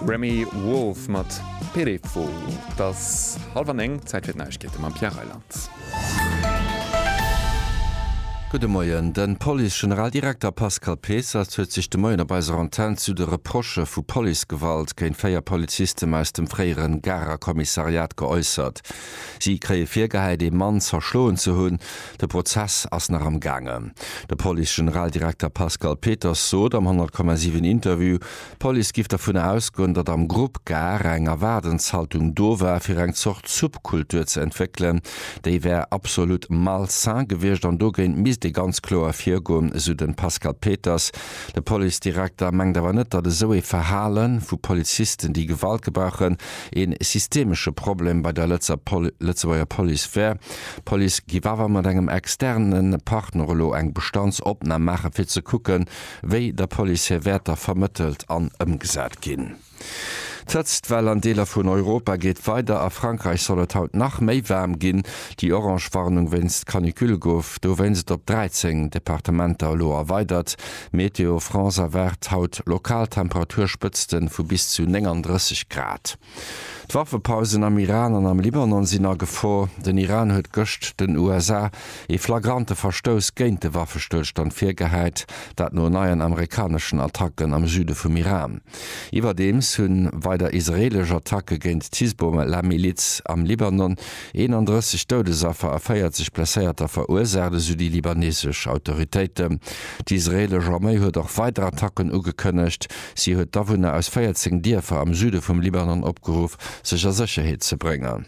Remi Wolf mat Perefo. Et ass hallef an eng, Zäit fir d'Neiegkeete mam Pierre Reyland. Gudde Moien. De Police-Generaldirekter Pascal Peesserz huet sech de Moien op eiser Antenn zu de Reprochë vu Policegewalt géint véier Polizisten aus dem fréiere Garer Kommissariat geäussert. Si kréie virgehäit, ee Mann zerschloen ze hunn. De Prozess ass nach am gaangen. De Police-Generaldirekter Pascal Peters sot am 100,7 Interview, d'Police giff dervun ausgoen, datt am Grupp Gare eng Erwaardenshaltung do war fir eng Zort Subkultur ze entwéckelen. Déi wär absolut malsain gewiescht an dogéint misst ee ganz kloer virgoen, esou de Pascal Peters. De Police-Direkter mengt awer net, datt esou ee Verhale vu Polizisten, déi Gewalt gebrauchen, ee systemesche Problem bei der Lëtzebuerger Police wär. D'Police giff awer mat engem externe Partner elo eng Bestandsopnahm maachen, fir ze kucken, wéi der Police hir Wäerter vermëttelt an ëmgesat ginn. D'Hëtztwell an Deeler vun Europa geet weider. A Frankräich soll et haut nach méi waarm ginn. Déi orange Warnung wéinst Canicule gouf dowéinst op 13 Departementer elo erweidert. Météo France erwaart haut lokal Temperaturspëtzte vu bis zu 39 Grad. D'Waffepausen am Iran an am Libanon sinn a Gefor. Den Iran huet gëscht den USA ee flagrante Verstouss géint de Waffestëllstand virgehäit, dat no neien amerikaneschen Attacken am Süde vum Iran. Iwwerdeems hu weider israeelesch Attacke géint d'Hisbollah-Miliz am Libanon 31 Doudesaffer a 40 Blesséierter verursaacht, esou déi libanesesch Autoritéiten. D'israeelesch Arméi huet och weider Attacken ugekënnegt. Si huet d'Awunner aus 14 Dierfer am Süde vum Libanon opgeruff, sech a Sécherheet ze bréngen.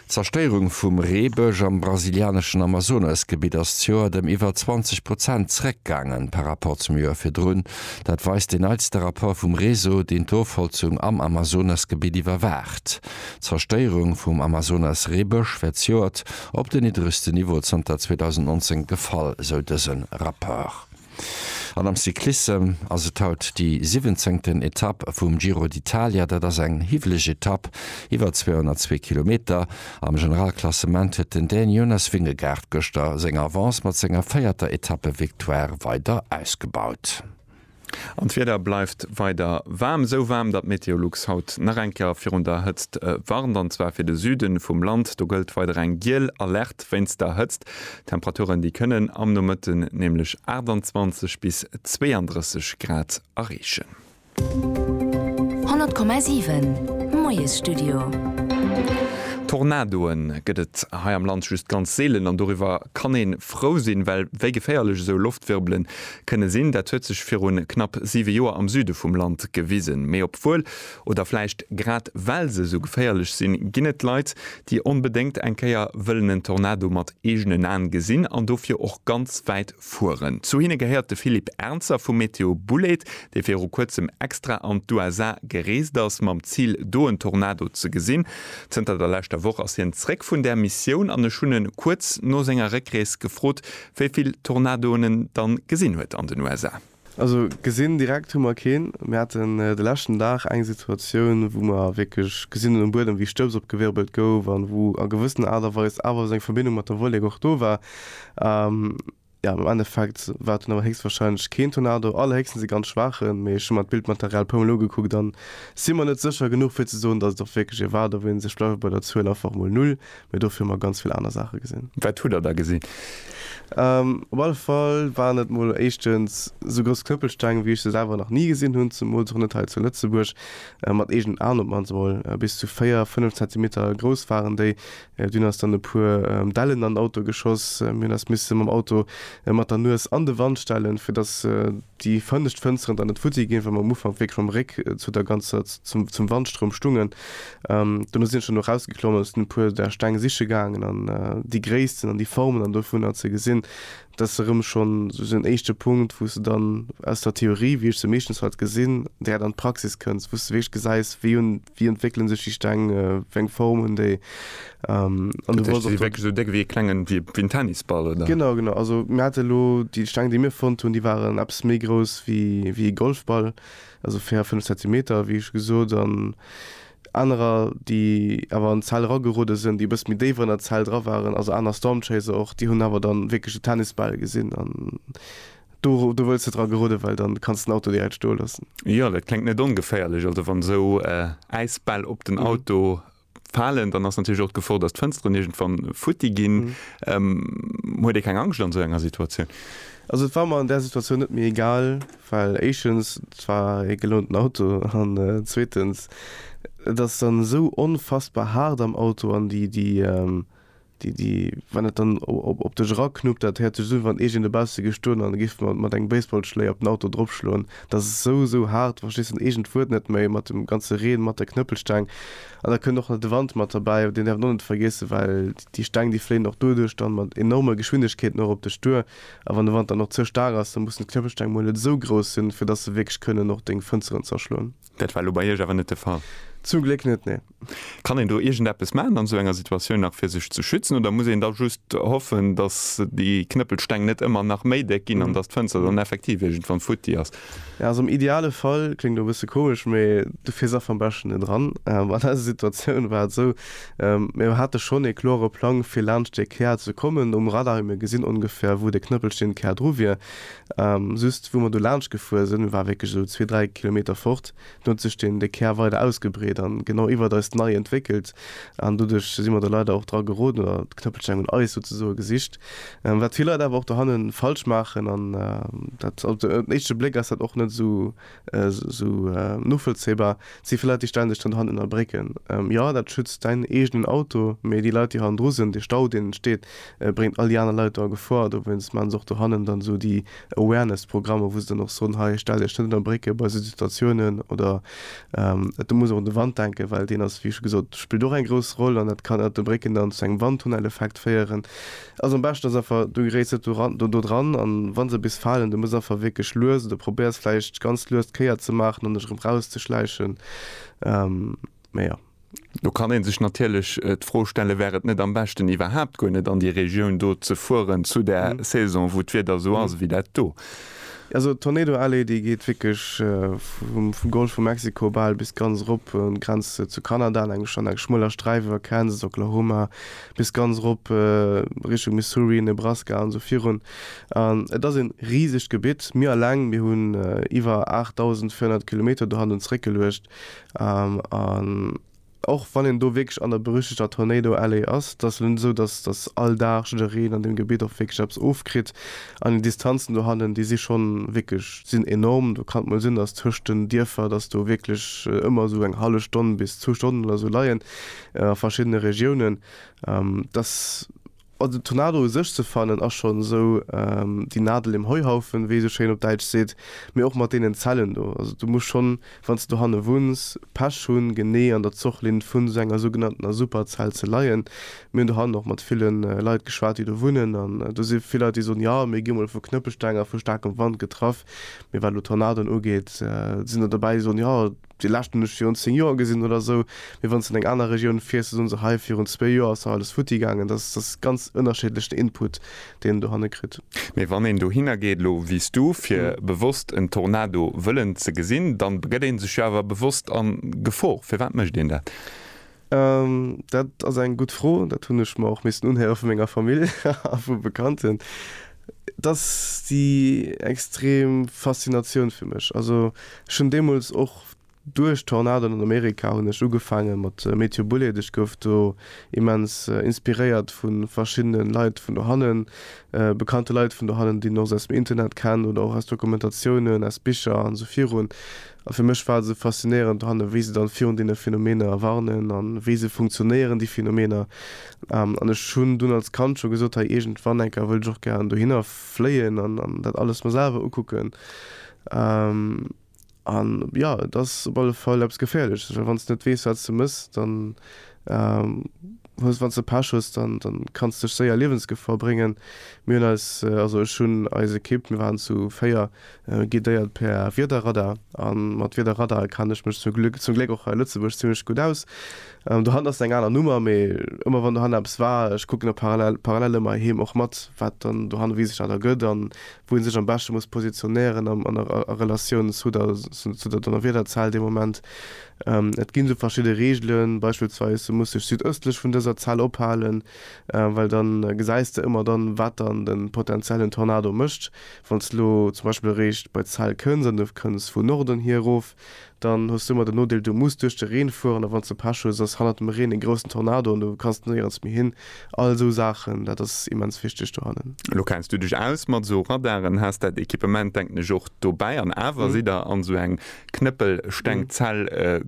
D'Zerstéierung vum Reebësch am brasilianeschen Amazonas-Gebitt ass d'Joert ëm iwwer 20 Prozent zeréckgaangen par Rapport zum Joer virdrun. Dat weist deen neitste Rapport vum Réseau, deen d'Ofholzung am Amazonas-Gebitt iwwerwaacht. D'Zerstéierung vum Amazonas-Reebësch wär d'Joert op den niddregste Niveau zanter 2019 gefall, sou dëse Rapport. An am Cyclissem ass et haut déi siwwenzéngten Etapp vum Giro d'Italia. Dat ass eng hiwweleg Etapp iwwer 202 Kilometer. Am Generalklassement huet den Dän Jonas Vingegaard gëschter seng Avance mat senger véierter Etappevictoire weider ausgebaut. An d'Wieder bleift weider waarm. Esou waarm, datt Meteolux haut nach eng Kéier virun der Hëtzt warnt. An zwar fir de Süde vum Land. Do gëllt weider eng giel Alerte wéinst der Hëtzt. Temperaturen déi kënnen am Nomëtten nämlech 28 bis 32 Grad erreechen. 100,7 Moiesstudio. Tornadoe gëtt et hei am Land just ganz seelen an doriwwer kann ee frou sinn, well wéi geféierlech esou Loftwirbele kënne sinn, dat huet sech viru knapp siwe Joer am Süde vum Land gewisen. Mee obwuel, oder vläicht grad well se esou geféierlech sinn, ginn et Leit, déi onbedéngt eng Kéier wëllen en Tornado mat eegenen Aen gesinn an dofir och ganz wäit fueren. Zu hinne gehéiert de Philippe Ernzer vu Météo Bouled, dee viru kuerzem extra an d'USA gereest ass, mam Zil, do en Tornado ze gesinn. Zënter der leschter Woch ass hien zréck vun där Missioun an ech hunn e kuerz no senger Réckrees gefrot, wéi vill Tornadoen en dann gesinn huet an den USA. Also gesinn direkt hu mer keen. Mir haten de leschten Dag eng Situatioun, wou mer wierklech gesinn hunn um Buedem, wéi Stëbs opgewirbelt gouf an wou a gewëssener Aart a Weis awer esou eng Verbindung mat der Wollek och do war. Jo, am Endeffekt war et dunn awer héchstwahrscheinlech keen Tornado, allerhéchstens e ganz schwaachen. Mee ech hu mer d'Bildmaterial e puermol ugekuckt a si mer net sécher genuch, fir ze soen, datt et och wierklech ee war. Do wéinst ech bleiwe bei der Zuel einfach mol null, Mee dofir hu mer ganz vill aner Saache gesinn. Wat hutt der da gesinn? Op alle Fall waren et mol éischtens esou grouss Knëppelsteng, wéi ech se selwer nach ni gesinn hunn, zemools och net hei zu Lëtzebuerg, mat eegenen Aen op d'mannst emol. Bis zu véier, fënnef Zentimeter grouss waren déi. Dunn ass dann e puer Dellen an den Auto geschoss. Mir hunn eis misse mam Auto mat der Nues an de Wand stellen, fir datt déi fënnescht Fënsteren dann net futti ginn, well mer am Ufank wierklech mam Réck zu der ganzer, zum Wandstroum stungen. Um dono sin ech dann erausgeklommen an sin e puer där Steng siche gaangen an déi Gréissten an déi Formen an dovunner ze gesin. Dat ass erëm schon sou en éischte Punkt wous de dann aus der Theorie, wéi ech se meeschtens halt gesin, direkt an d'Praxis kënns, wous de wierklech gesäis wéi un wéi entwéckelen sech déi Steng, wéi eng Form hun déi an du Dat heescht, si si wierklech esou déck wéi e klengen, wéi en Tennisball oder? Genau, genau, also mir hate lo déi Steng déi mir fonnt hun, déi waren eppes méi grouss wéi wéi e Golfball. also 4, 5 Zentimeter, wéi scho gesot, an anerer, déi awer an d'Zell eragerude sinn, déi e bësse méi déif an der Zell dra waren, also aner Stormchaser och, déi hunn awer da wierklech de Tennisbal gesinn an do wëlls de dra gerudden, well dann kanns de den Auto direkt stoe loossen. Jo, dat kléngt net ongeféierlech, also wann esou Äisbäll op den Auto falen, dann ass natierlech och d'Gefor, datt d'Fënsteren iergendwann futti ginn. Huet ee keng Angscht an esou enger Situatioun? Also et war mer an där Situatioun net méi egal, well éischtens, et war ee gelounten Auto an zweetens, et ass dann esou onfassbar haart am Auto an déi Wann et dann op dech eraknuppt, dat häert sech esou un, wann ee géint e bausse géif stoen an e géif mat engem Baseballschléi op den Auto dropschloen. Dat ass esou, esou haart, du verstees dann eegent Wuert net méi, mat dem ganze Reen, mat der Knëppelsteng. An da kënnt och nach de Wand mat derbäi, deen däerf een och net vergiessen, well déi Steng, déi fléien och doduerch dann mat enorme Geschwindegkeeten och op dech duer. A wann de Wand dann och ze staark ass, da mussen d'Knëppelsteng mol net esou grouss sinn, fir dass se wierklech kënnen och deng Fënsteren zerschloen. Dat war elo bei Iech awer net de Fall? Zum Gléck net, nee. Kann een do iergendeppes maachen an esou enger Situatioun nach fir sech ze schützen oder muss een da just hoffen, datt déi Knëppelsteng net ëmmer nach méi déck ginn an datt d'Fënster dann effektiv iergendwann futti ass? Jo, also am ideale Fall, kléngt elo e bësse komesch, mee du fiers einfach am beschten net eran. An eiser Situatioun war et esou, mir hate schonn ee kloere Plang fir laanscht dee Kär ze kommen um Radar, mir gesinn ongefähr wou de Knëppelsteng Kär dru wier, Just wou mer do laanscht gefuer sinn, war wierklech esou zwee, dräi Kilometer fort, do huet sech den de Kär weider ausgebreet an genau iwwert eis nei entwéckelt an doduerch si mer do leider och dra geroden oder d'Knëppelsteng un eis souzesoe gesicht, wat vill Leit awer och dohannen falsch maachen an dat op den éischte Bléck ass dat och net esou Esou novollzéibar si fir Leit, déi stänneg dann hannen a brécken. Jo, dat schützt däin eegenen Auto, mee déi Leit, déi hannendru sinn, dee Stau, deen entsteet, bréngt all déi aner Leit do a Gefor. Dowéinst maachen se och do hannen dann esou déi Awareness-Programmer, wou se dann och soen, hei, stell Iech net ënner Brécke bei esou Situatiounen. Oder et muss och un de Wand denken, well deen ass, wéi scho gesot, spillt och eng grouss Roll. An dat kann ënnert de Brécken dann zu engem Wandtunneleffekt féieren. Also am beschten ass einfach du geréiss net doran dodran an wann se bis falen du muss einfach wierklech lues oder probéiers vläicht ganz lues d'Kéier ze maachen an dech erëm raus ze schläichen mee jo. Do kann een sech natierlech d'Fro stellen, wär et net am beschten iwwerhaapt guer net an déi Regioun do ze fueren zu der Saison wou d'Wieder esou ass ewéi dat do? Also d'Tornado Alley déi geet wierklech vum vum Golf vu Mexiko bal bis ganz erop un d'Grenz zu Kanada an engem an engem schmueler Sträif iwwer Kansas, Oklahoma, bis ganz erop Richtung Missouri, Nebraska an esou virun. An et ass en risegt Gebitt. Mir alleng, mir hunn iwwer 8.400 Kilometer do hannen zréck geluecht. An och wann een do wierklech an der berüchtegter Tornado Alley ass, et ass elo net esou, dass dass all Dag jiddereen an deem Gebitt och wierklech eppes ofkritt. An déi Distanzen do hannen, déi si schonn wierklech, sinn enorm. Do kann et mol sinn, dass tëscht den Dierfer, dass do wierklech ëmmer esou eng hallef Stonn bis zwou Stonnen oder esou leien. a verschiddene Regiounen, dass, also Tornado u sech ze fannen ass schonn esou déi Nadel im Heuhaufen, wéi ee esou schéin op Däitsch seet, mee och mat deenen Zellen do. Also du muss schonn, wann s de dohanne wunns, Pech hunn, genee an der Zochlinn vun esou enger sougenanntener Superzell ze leien. Mir hunn dohannen och mat ville Leit geschwat, déi do wunnen, an do si vill Leit, déi soen, jo, mir gi mol vu Knëppelsteng a vu staarkem Wand getraff, mee wat elo Tornadoen ugeet, sinn der dobäi, déi soen, jo, Déi leschten hunn ech virun 10 Joer gesinn oder esou. Mee wann s de an eng aner Regioun fiers, da soen se, hei virun zwee Joer ass nach alles futti gaangen. Dat ass, dat ass ganz ënnerschiddlech den Input, deen een dohanne kritt. Mee wann een dohinner geet, elo wéi s du, fir bewosst en Tornado wëllen ze gesinn, dann begëtt ee sech jo awer bewosst an Gefor. Firwat mécht een dat? Dat ass eng gutt Fro. Dat hunn ech mer och missen unhéiere vu menger Famill a vu Bekannten. Et ass déi extrem Faszinatioun fir mech. Also ech hunn deemools och duerch d'Tornadoen an Amerika hunn ech ugefaange mat Météo Bouled. Ech gouf do immens inspiréiert vu verschiddene Leit vun dohannen, bekannte Leit vun dohannen, déi een och esou aus dem Internet kennt oder och aus Dokumentatiounen, aus Bicher an esou virun. A fir mech war et esou faszinéierend dohannen, wéi se dann virun deene Phänomener warnen an wéi se funktionéieren, déi Phänomener. An ech hunn dunn als Kand scho gesot, hei iergendwann eng Kéier wëll ech och gären dohinner fléien an dat alles mer selwer ukucken. An jo, et ass op alle Fall eppes Geféierleches, well wann s de net weess, wat s de méchs, dann hues wanns de Pech hues dann dann kanns dech séier Liewensgefor bréngen. Mir hunn eis, also ech hunn eis Equipe, mir waren zu 4, guidéiert per Wiederradar an mat Wiederradare kann ech mech zum Glück zum Gléck och hei a Lëtzebuerg zimlech gutt aus. Dohannert ass eng aner Nummer mee ëmmer wann dohannert eppes war, ech kucken da parallel parallel ëmmer heem och mat wat dann dohannert wéi sech dat ergëtt an wou en sech am beschte muss positionéieren a a Relatioun zu der zu der Donnerwiederzell dee Moment. Et ginn esou verschidde Reegelen, beispillsweis du muss dech südëstlech vun dëser Zell ophalen, well dann gesäis de ëmmer dann, wat dann de potenziellen Tornado mécht. Wann s de elo zum Beispill eréischt bei d'Zell kënns an du kënns vun Norden hier erof, dann hues du ëmmer den Nodeel du muss duerch de Reen fueren a wanns de Pech hues ass hannert dem Reen en groussen Tornado an du kanns néierens méi hin. All esou Saachen, dat ass immens wichteg dohannen. Elo kenns du dech aus mat esou Radaren, has dat Equipement denken ech och dobäi an awer sidd der an esou eng Knëppelstengzell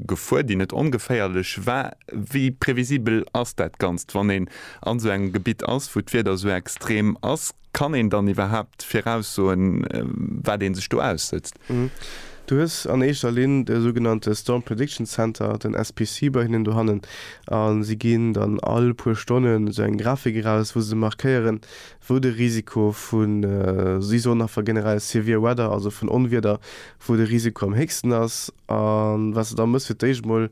gefuer, déi net ongeféierlech war. Wéi previsibel ass dat Ganzt, wann een an esou engem Gebitt ass, wou d'Wieder esou extrem ass? Kann een dann iwwerhaapt viraussoen, wat ee sech do aussëtzt? Du hues an éischter Linn de sougenannte Storm Prediction Center, den SPC, bei hinnen dohannen a si ginn dann all puer Stonnen esou eng Grafik eraus, wou se markéieren, wou de Risiko vu, si soen einfach generell severe weather, also vun Onwieder, wou de Risiko am héchsten ass. A wat se da mëssen, fir d'éischt emol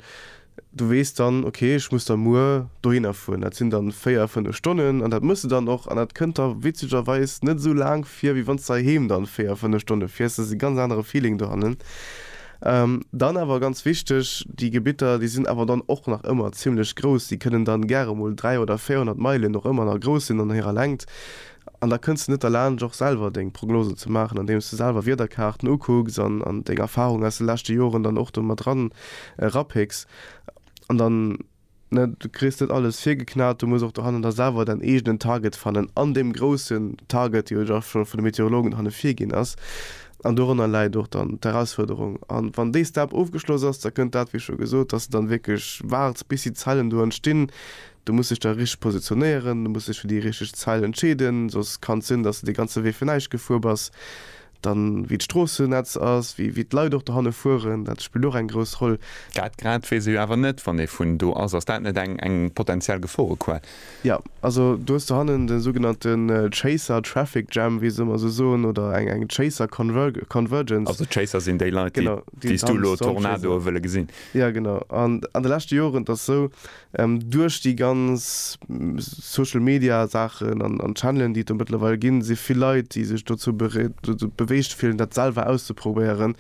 Du weess dann, ok, ech muss da muer dohinner fueren. Dat sinn dann véier, fënnef Stonnen an dat muss de dann och. An dat kënnt der witzegerweis net esou laang vir, wéi wann s de heiheem dann véier, fënnef Stonne fiers. Dat ass e ganz anere Feeling dohannen. Dann awer ganz wichteg, déi Gebitter, déi sinn awer dann och nach ëmmer zimmlech grouss. Déi kënnen dann gäre mol 300 oder 400 Meilen och ëmmer nach grouss sinn an hirer Längt. An da kënns de net derlaanscht och selwer deng Prognosen ze maachen, andeems de selwer Wiederkaarten ukucks an deng Erfarungen aus de leschte Joren dann och do mat eran rapicks. An dann, ne, du kriss net alles virgeknat, du muss och dohannen da selwer däin eegenen Target fannen an deem groussen Target, dee jo da scho vun de Meteorologen hanne virginn ass. An dorënner läit och dann d'Erausfuerderung. A wann dee Step ofgeschloss ass, da kënnt dat, wéi scho gesot, dass de dann wierklech waards, bis déi Zellen do entstinn, Du muss dech da richteg positionéieren, du muss dech fir déi richteg Zeil entscheeden, soss kann et sinn, dass de dee ganze Wee fir näischt gefuer bass. Dann, wéi d'Stroossennetz ass, wéi wéi d'Leit och dohanne fueren, dat spillt och eng grouss Roll. Dat grad weess ech awer net, wann ee vun do ass. Ass dat net eng eng potentiell Geforequell? Jo, also du hues dohannen de sougenannte Chaser Traffic Jam, wéi se ëmmer esou soen, oder eng eng Chaser Conver Convergence. Also d'Chaser sinn déi Leit, déi Genau, déi déi s du elo Tornadoe wëlle gesinn. Jo, genau. An an de leschte Joren, et ass esou, Duerch déi ganz Social Media Saachen an Channelen, déi et do mëttlerweil ginn, si vill Leit, déi sech dozou beweegt fillen, dat selwer auszeprobéieren.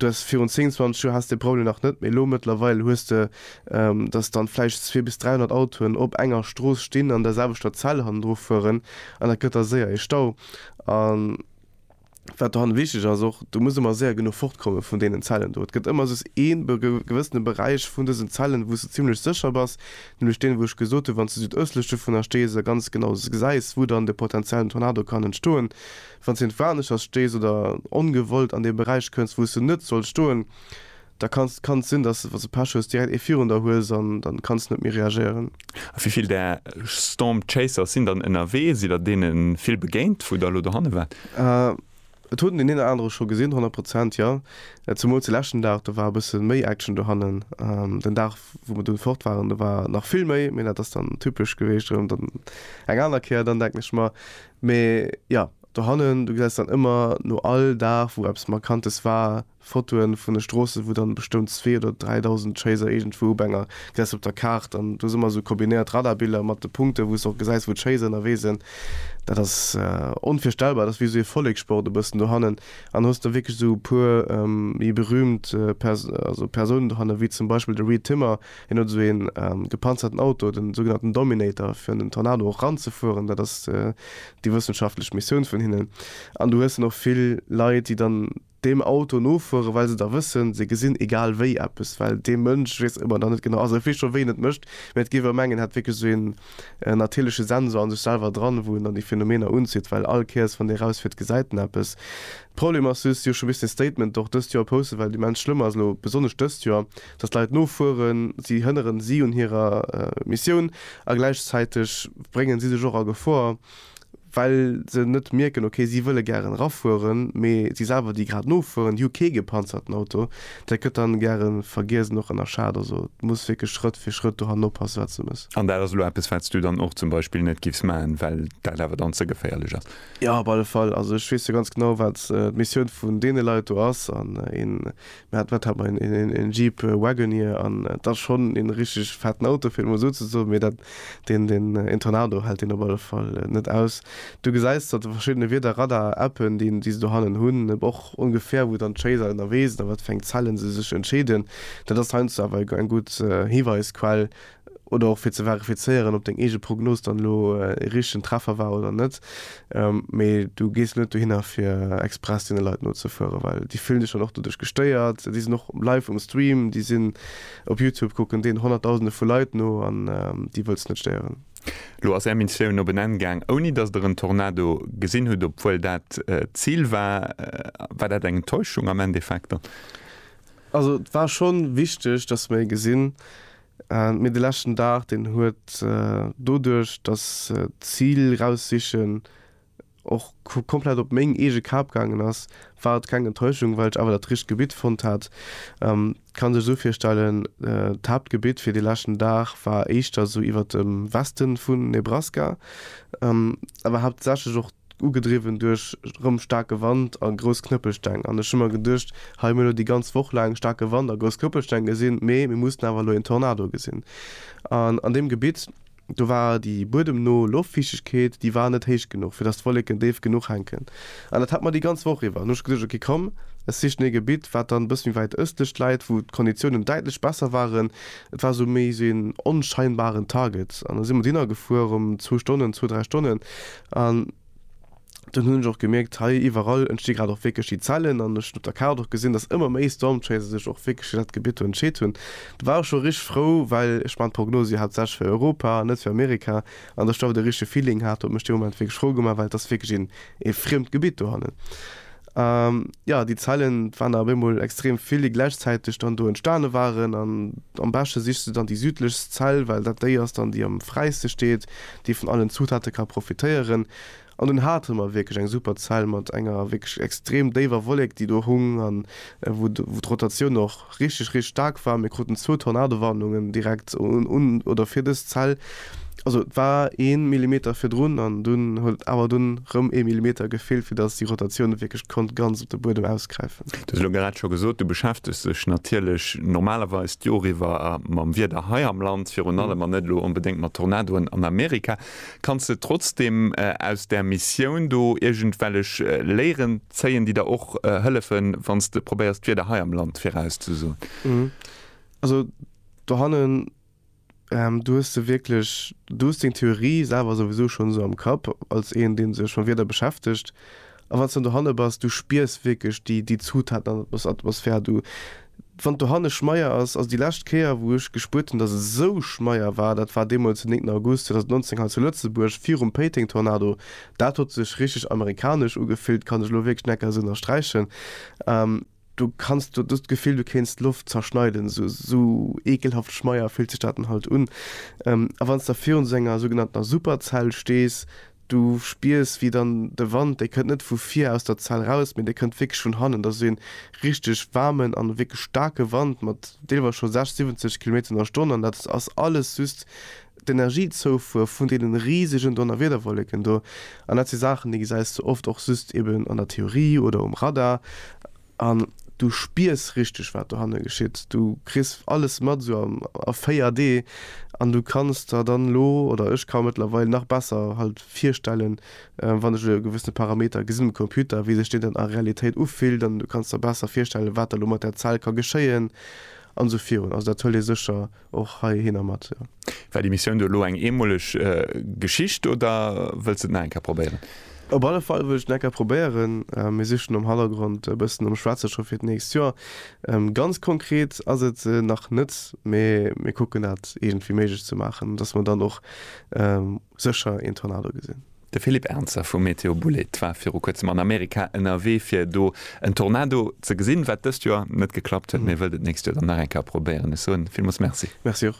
Du has virun 10, 20 Joer haas de Problem nach net, mee elo mëttlerweil hues de, dass dann vläicht zwee bis 300 Autoen op enger Strooss stinn an der selwechter Zell hannendru fueren an dat gëtt da séier ee Stau. wat dohanne wichteg ass och, do muss ëmmer séier genuch fortkomme vun deenen Zellen do. Et gëtt ëmmer soss ee gewëssene Beräich vun dësen Zellen, wou s de zimmlech sécher bass, nämlech deen, wou ech gesot hunn, wann s de südëstlech dovunner stees a ganz genau gesäis, wou dann de potenziellen Tornado kann entstoen. Wann s de irgendwo aneschters stees oder ongewollt an dee Beräich kënns, wou s de net solls stoen, Da kann et sinn, dass de, wa s de Pech hues, direkt ee virun der hues an dann kanns de net méi reagéieren. A wéi vill där Storm Chasers sinn dann ënnerwee? Sidd der deene vill begéint, wou der elo dohanne waart? Et huet een deen een oder anere scho gesinn, honnert Prozent, jo. Zemools de leschten Dag, do war e bësse méi Action dohannen. Den Dag, wou mer dunn fort waren, do war nach vill méi, mee dat ass dann typesch geweecht erëm dann eng aner Kéier dann, denken ech mer. Mee jo, dohannen, du gesäis dann ëmmer no all Dag, wou eppes Markantes war, Fotoen vun de Stroossen wou dann bestoun 2 oder 3000 Chaser iergendwou op enger, gesäis op der Kaart an do si mer esou kombinéiert Radarbiller mat de Punkten wou s de och gesäis wou d'Chaser ënnerwee sinn. Dat ass onvirstellbar, dat ass wéi esou ee Vollekssport e bëssen dohannen an da hues de wierklech esou e puer méi berühmt also Persounen dohannen wéi zum Beispill de Reid Timmer, hien huet esou een gepanzerten Auto, den sougenannten Dominator fir un den Tornado och ranzefueren, dat ass déi wëssenschaftlech Missioun vun hinnen an du hues dann och vill Leit déi dann deem Auto nofueren, well se da wëssen, se gesinn egal wéi eppes, well dee Mënsch weess ëmmer nach net genau, also e weess scho wéi en et mécht, mä et géif e mengen, en hätt wierklech esou een natierleche Sensor a sech selwer dran, wou en dann déi Phänomener unzitt, well all Kéiers, wann dee erausfiert, gesäit en eppes. De Problem ass just, si hu scho bis den Statement och dëst Joer posten, well immens schlëmm ass elo, besonnesch dëst Joer, datt d'Leit nofueren, si hënneren si un hirer Missioun a gläichzäiteg bréngen si sech och a Gefor. well se net mierken, ok si wëlle gären erafueren, mee si selwer déi grad nofueren, déi hu kee gepanzerten Auto, dat gëtt dann gäre vergiess och ënnerschat. Also et muss wierklech Schrëtt fir Schrëtt do hannen oppassen, wat se muss. An dat ass elo eppes, wat s du dann och zum Beispill net giffs maachen, well dat awer dann ze geféierlech ass? Jo, op alle Fall. Also ech weess jo ganz genau, wat d'Missioun vun deene Leit do ass, an een Mä wat hat mer een Jeep Wagoneer an et ass schonn een richteg fetten Auto fir et emol esou ze soen, mee dat deen deen een Tornado hält deen op alle Fall net aus. Du gesäis datt déi verschiddene Wieder Radar Appen déi déi se do hannen hunn och ongefähr wou dann d'Chaser ënnerwee sinn a wat fir eng Zellen se sech entscheeden. Dat ass heiansdo awer eng gutt Hiweisquell oder och fir ze verifizéieren, ob deng eege Prognos dann elo ee richtegen Treffer war oder net, mee du gees net dohinner fir express deene Leit nozefueren, well déi fillen dech dann och doduerch gestéiert, déi sinn och live um Stream, déi sinn op Youtube, kucken deenen honnertdausende vu Leit no an déi wëlls de net stéieren. Elo ass är Missioun op en Enn gaang ouni datt der en Tornado gesinn hutt, obwuel dat d'Zil war. War dat eng Enttäuschung am Endeffekt dann? Also et war schonn wichteg, datt mer ee gesinn, Mee de leschten Dag, deen huet doduerch, datt d'Zil raussichen och komplett op meng eege Kap gaangen ass, war et keng Enttäuschung, well ech awer dat richteg Gebitt fonnt hat. Et kann sech esou virstellen, d'Haaptgebitt fir dee leschten Dag war éischter esou iwwert dem Weste vu Nebraska, awer haaptsächlech och ugedriwwen duerch rëm staarke Wand a grouss Knëppelsteng. An ech hu mer geduecht, hei hu mir elo déi ganz Woch laang staarke Wand a grouss Knëppelsteng gesinn, mee mir mussen awer elo een Tornado gesinn. An an deem Gebitt, do war déi buedemno Loftfiichtegkeet, déi war net héich genuch, fir datt d'Wolleken déif genuch hänken. An dat hat mer déi ganz Woch iwwer. An hu ech geduecht, ok komm, ech sichen ee Gebitt, wat dann e bësse méi wäit ëstlech läit, wou d'Konditiounen däitlech besser waren. Et war esou méi esou een onscheinbaren Target. An da si mer dohinner gefuer, erëm zwou Stonnen, zwou, dräi Stonnen. An dunn hunn ech och gemierkt, hei iwwerall entsti grad och wierklech déi Zellen. An ech hunn op der Kaart och gesinn, datt ëmmer méi Stormchaser sech och wierklech fir dat Gebitt do entscheet hunn. Do war ech scho richteg frou, well ech maachen d'Prognose jo haaptsächlech fir Europa an net fir Amerika, an datt ech do awer de richtege Feeling hat, huet mech dee Moment wierklech frou gemaach, well et ass wierklech een friemt Gebitt dohannen. A jo, déi Zellen, et waren der op eemol extrem vill, déi gläichzäiteg dann do entstane waren. An am beschte sichs du dann déi südlechst Zell, well dat déi ass dann, déi am fräiste steet, déi vun allen Zutate ka profitéieren. An dunn hate mer wierklech eng super Zell mat enger wierklech extrem déiwer Wollek, déi do hung, an wou d'Rotatioun och. richteg richteg staark war. Mir kruten zwou Tornadowarnungen direkt un oder fir dës Zell. Also et war ee Millimeter virdrun an dunn huet awer dunn erëm ee Millimeter gefeelt, fir datt déi Rotatioun wierklech konnt ganz op de Buedem ausgräifen. Du hues elo grad scho gesot, du beschäftegs dech natierlech normalerweis d'Jor iwwer mam Wieder hei am Land virun allem an net elo onbedéngt mat Tornadoen an Amerika. Kanns de trotzdem aus där Missioun do iergendwellech Léieren zéien, déi der och hëllefen, wann s de probéiers d'Wieder hei am Land virauszesoen? Also dohannen, du hues de wierklech, du hues deng Theorie selwer souwisou schonn esou am Kapp, als een, dee sech mam Wieder beschäftegt. A wann s dann dohanne bass, du spiers wierklech déi, déi Zutaten an der Atmosphär. Du, wann dohanne schmeier ass, also déi lescht Kéier, wou ech gespuert hunn, datt et esou schmeier war, dat war deemools den 9 August 2019 hei zu Lëtzebuerg, virum Péiteng-Tornado. Dat huet sech richteg amerikanesch ugefillt, kann ech elo wierklech net ka esou ënnersträichen. Du kanns do just d'Gefill, du kéints d'Loft zerschneiden, sou, sou eekelhaft schmeier fillt sech dat dann halt un. A wann s de da virun esou enger sougenanntener Superzell stees, du spiers, wéi dann de Wand, dee kënnt net vu vir aus der Zell raus, mee dee kënnt wierklech vun hannen. Dat ass ee richteg waarmen a wierklech staarke Wand mat deelweis scho 60, 70 Kilometer an der Stonn an dat ass alles just d'Energiezoufuer vun deene risegen Donnerwiederwolleken do, an dat si Saachen, déi gesäis de oft och just eben an der Theorie oder um Radar, an du spiers richteg, wat dohanne geschitt, du kriss alles mat esou a 4D an du kanns der dann elo, oder ech ka mëttlerweil nach besser halt virstellen, wann ech elo e gewëssene Parameter gesinn um Computer, wéi sech deen dann a Realitéit ufillt, an du kanns der besser virstellen, wat da elo mat där Zell ka geschéien, an esou virun. Also dat huelt ee sécher Och hei hinner mat, jo. War déi Missioun do elo eng eemoleg Geschicht oder wëlls de et nach eng Kéier probéieren? Op alle Fall wëll ech et nach eng Kéier probéieren. Mir sichen am Hannergrond e bëssen nom Schwätze scho fir d'nächst Joer. Ganz konkret ass et nach net, mee mir kucken dat iergendwéi méiglech ze maachen, dass mer dann och Sécher een Tornado gesinn. De Philippe Ernzer vu Météo Boulét war viru kuerzem an Amerika ënnerwee fir do en Tornado ze gesinn. Wat dëst Joer net geklappt huet, mee wëllt et d'nächst Joer dann nach eng Kéier probéieren. Ech soen villmools Merci. Merci och.